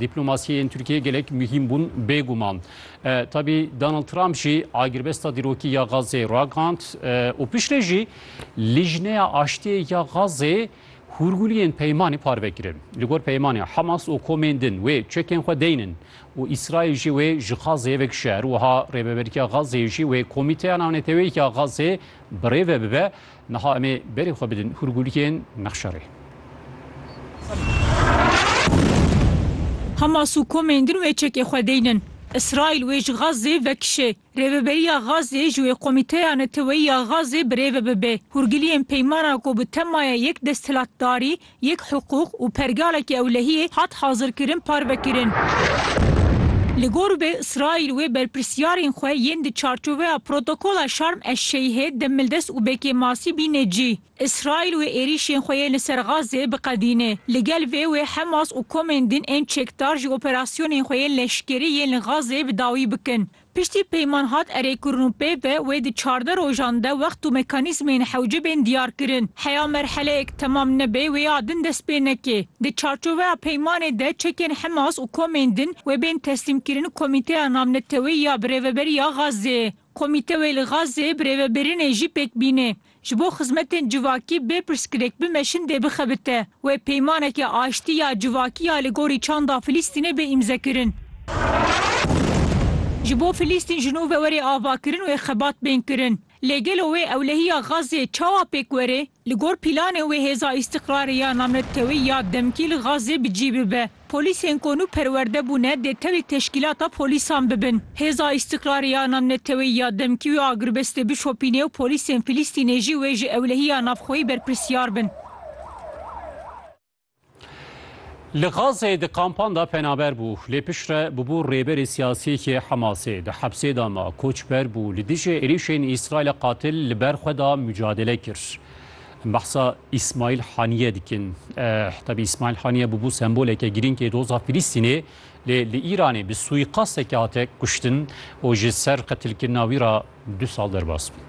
Dîplomasiyên Tirkiyeyê gelek muhîm bûn bêguman. Tabî Donald Trump jî agirbesta dîrokî ya Gazeyê ragihand û piştre jî Lijneya Aştiyê ya Gazeyê hûrguliyên peymanê parve kirin. Li gor peymanê Hamas û komên din wê çekên xwe deynin û Îsraîl jî wê ji Gazeyê vekişe. Her wiha Rêveberiya Gazeyê jî wê Komîteya Navneteweyî ya Gazeyê birêve bibe Niha em ê berê xwe bidin hûrgulîkên Mexşerê. Hamas û komên din wê çekê xwe deynin. Îsraîl wê ji Gazê vekişê. Rêveberiya Gazê ji wê Komîteya Neteweyî ya Gazê birêve bibe. Hûrgiliyên peymana ku bi temaya yek desthilatdarî Yek hiqûq û pergaleke ewlehiyê hat hazirkirin parvekirin. Li gor vê Îsraîl wê berpirsiyarên xwe yên di çarçoveya Protokola Şarm eş-Şeyhê de Mildes û Bekê Masî bîne cî. Îsraîl wê êrîşên xwe yên li ser Gazeyê biqedîne. Li gel vê wê Hemas û komên din ên çekdar jî operasyonên xwe yên leşkerî yên li Gazeyê bi dawî bikin. Piştî peyman hat erê kirin û pê ve wê di çardeh rojan de wext û mekanîzmên hewce bên diyar kirin. Heya merheleyek temam nebe wê ya din dest pê neke. Di çarçoveya peymanê de çekên Hemas û komên din wê bên teslîmkirin Komîteya Navneteweyî ya Birêveberiya Xazzeyê. Komîte wê li Xazzeyê birêvebirînê jî pêk bînê. Ji bo xizmetên civakî bê pirsgirêk bimeşin dê bixebite. Wê peymaneke aştî ya civakî ya li gorî çanda Filîstînê bê îmzekirin. Ji bo Filîstîn ji nû ve were avakirin wê xebat bên kirin. Lê gelo wê ewlehiya Xazzeyê çawa pêk were? Li gor pîlanên wê hêza Îstîqrarê ya Namretkewî ya demkî li Xazzê bi cî bibe. Polîsên ku nû perwerde bûne dê tevî teşkîlata polîsan bibin. Hêza Îstîqrarê ya navneteweyî ya demkî wê agirbestê bişopînê û polîsên Filîstînê jî wê ji ewlehiya navxweyî berpirsiyar bin. Li Gazeyê di kampan de penaber bû, lê piştre bûbû rêberê siyasî yê Hemasê. Di hepsê de ma, koçber bû, li dijî êrîşên Îsraîlê qatil li ber xwe da mucadele kir. Em behsa Îsmaîl Haniyê dikin. Tevî Îsmaîl Haniyê bûbû semboleke girîngê doza Filîstînê lê li Îranê bi suîqastekî hate kuştin û ji ser qetilkirina wî re du sal derbas bû.